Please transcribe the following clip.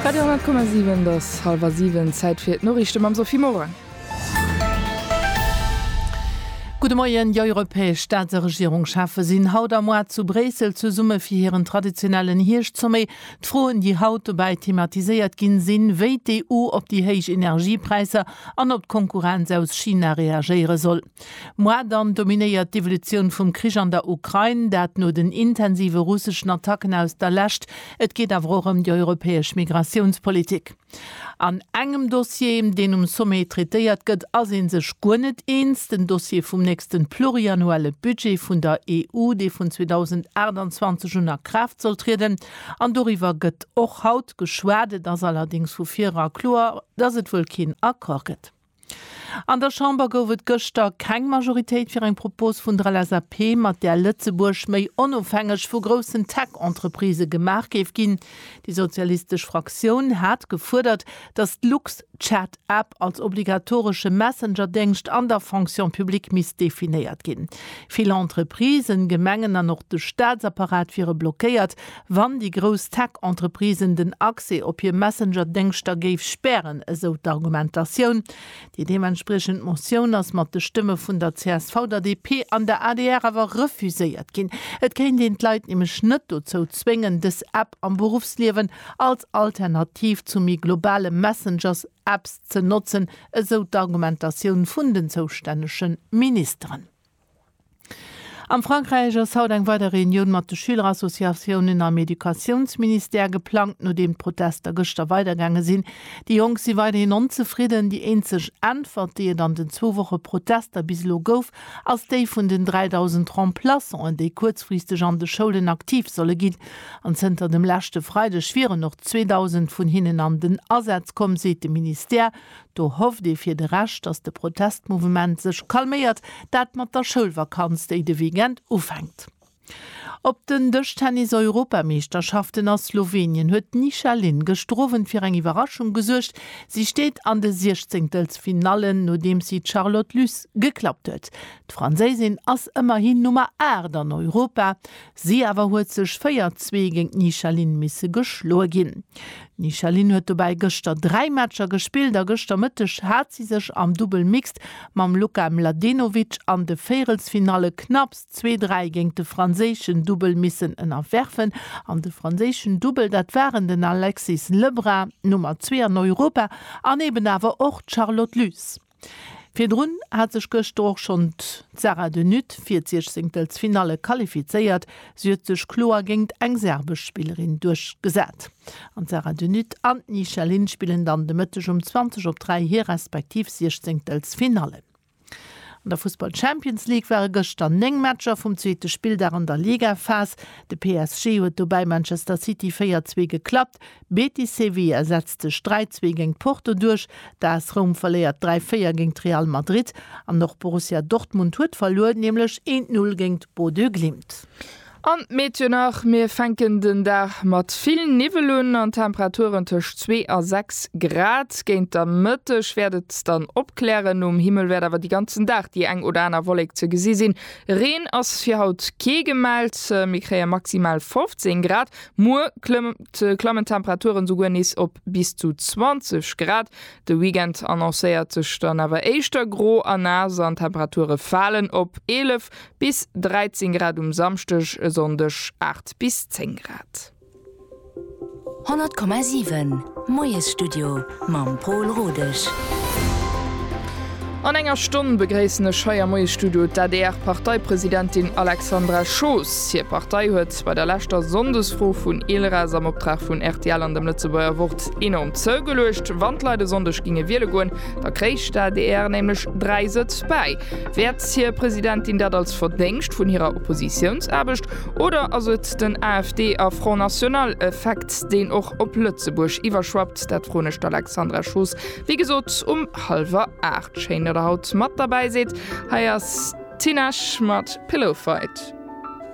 Radio 10,7 Et ass hallwer siwen, Zäit fir d'Noriichte mam Sophie Morang. Gudde Moien, Déi europäesch Staats a Regierungschefe sinn haut a moar zu Bréissel zesumme fir hiren traditionellen Hierscht-Sommet. D'Froen, déi haut dobäi thematiséiert ginn, sinn, wéi d'EU op déi héich Energiepräisser an op d'Konkurrenz aus China reagéiere soll. Mois dann dominéiert d'Evolutioun vum Krich an der Ukrain, dat no den intensive russeschen Attacken aus der Lescht. Et geet awer och ëm déi europäesch Migratiounspolitik. An engem Dossier, deen um Sommet traitéiert gëtt, ass ee sech guer net eens, den Dossier vum nächsten pluriannuelle Budget vun der EU, dee vun 2028 un a Kraaft soll trieden. An doriwwer gëtt och haut geschwat. Et ass allerdéngs vu vir era kloer, dass et wuel keen Accord gëtt. An der Chamber gouf et gëschter keng Majoritéit fir eng Propos vun der LSAP, mat där Lëtzebuerg méi onofhängeg vu groussen Tech-Entreprisë gemaach géif ginn. Déi sozialistesch Fraktioun hat gefuerdert, datt d'Lux-Chat-App als obligatoresche Messenger-Déngscht an der Fonction publique misst definéiert ginn. Vill Entreprisen, Gemengen an och de Staatsapparat wiere blockéiert, Wann déi grouss Tech-Entreprisen den Accès op hir Messenger-Déngschter géif spären, esou d'Argumentatioun. Déi deementspriechend Motioun ass mat de Stëmme vun der csv, der DP an der adr awer refuséiert ginn. Et kéint een d'Leit nämlech net dozou zwéngen, dës App am Beruffsliewen als Alternativ zu méi globale Messengers-Apps ze notzen, esou d'Argumentatioun vun den zoustännege Ministeren. Am Frankräich ass haut eng weider Reunioun mat de Schülerassociatiounen am Educatiounsministère geplangt, nodeem d'Protester gëschter weidergaange sinn. Déi Jonk si weiderhin onzefridden. Déi eenzeg Äntwert, déi et an den zwou Woche Protester bis elo gouf, ass déi vun den 3.000 Remplaçanten, déi kuerzfristeg an de Schoulen aktiv solle ginn. An zënter dem leschte Freideg wieren och 2.000 vun hinnen an den Asaz komm, seet de Ministère. Do hofft ee fir de Rescht, datt de Protestmouvement sech calméiert, dat mat der Schoulvakanz, déi de Weekend ufänkt. Op den Dëschtennis-Europameeschterschaften a Slowenien huet d'Nisha Lin gëscht Owend fir eng Iwwerraschung gesuergt. Si steet an de Siechzéngtelsfinallen, nodeems si d'Charlotte Lys geklappt huet. D'Franséisin ass ëmmerhin Nummer 8 an Europa. Si awer huet sech 4, Zwee géint d'Nichaline misse geschloe ginn. D'Nichaline huet dobäi gëschter 3 Matcher gespillt a gëschter Mëtteg hat si sech am Dubbel Mixed mam Luka Mladenovic an de Véirelsfinalle knapps zwee Dräi géint de franséischen Dubbel missen ënnerwerfen an de franséischen Dubbel, dat waren den Alexis Lebrun, Nummer zwee an Europa, an eben awer och d'Charlotte Lys. Virdrun hat sech gëschter och schonn d'Sara de Nutt fir d'Siechzenkelsfinalle qualifizéiert. Si huet sech kloer géingt eng serbesch Spillerin duerchgesat. An d'Sara de Nutt an d'Ni Shelin spillen dann de Mëtteg um 20 op 3 hir respektiv Siechzenkelsfinallen. An der Fussball Champions League ware gëschter 9 Matcher vum zweete Spilldag an der Ligaphas. De PSG huet dobäi Manchester City 4, 2 geklappt. Betis Sevilla setzt sech 3, 2 géint Porto duerch, d'AS Roum verléiert 3, 4 géint Real Madrid an och Borussia Dortmund huet verluer, nämlech 1, 0 géint Bodø Glimt. An d'Meteo nach, Mir fänken den Dag mat vill Niwwel un an Temperaturen tëscht 2 a 6 Grad. Géint der Mëtteg wäert et dann opklären, um Himmel wäert awer de ganzen Dag déi eng oder aner Wollek ze gesi sinn. Reen ass fir haut kee gemellt, mir kréie maximal 15 Grad. Muer klammen d'Temperaturen souguer nees op bis zu 20 Grad. De Weekend annoncéiert sech dann awer éischter gro a naass an d'Temperature falen op 11 bis 13 Grad um Samschdeg, e Sonndeg 8 bis 10 Grad. 100,7 Moiesstudio mam Pol Rodesch. An enger Stonn begréissen ech hei am Moiesstudio d'ADR-Parteipresidentin Alexandra Schoos. Hir Partei huet. Lëscht bei der leschter Sonndesfro vun ILRAS am Optrag vun rtl an dem Lëtzebuerger Wort enorm zougeluecht. Wann d'Leit e Sonndeg ginge wiele goen, da kréich d'ADR nämlech dräi Sëtz bäi. Wäert hir Presidentin dat als Verdéngscht vun hirer Oppositiounsaarbecht oder ass et den AfD a Front National Effekt, deen och op Lëtzebuerg iwwerschwappt? Dat froen ech d'Alexandra Schoos, wéi gesot, um hallwer aacht. Schéin, datt Der haut mat derbäi sidd. Hei ass d'Tinashe mat Pillow Fight.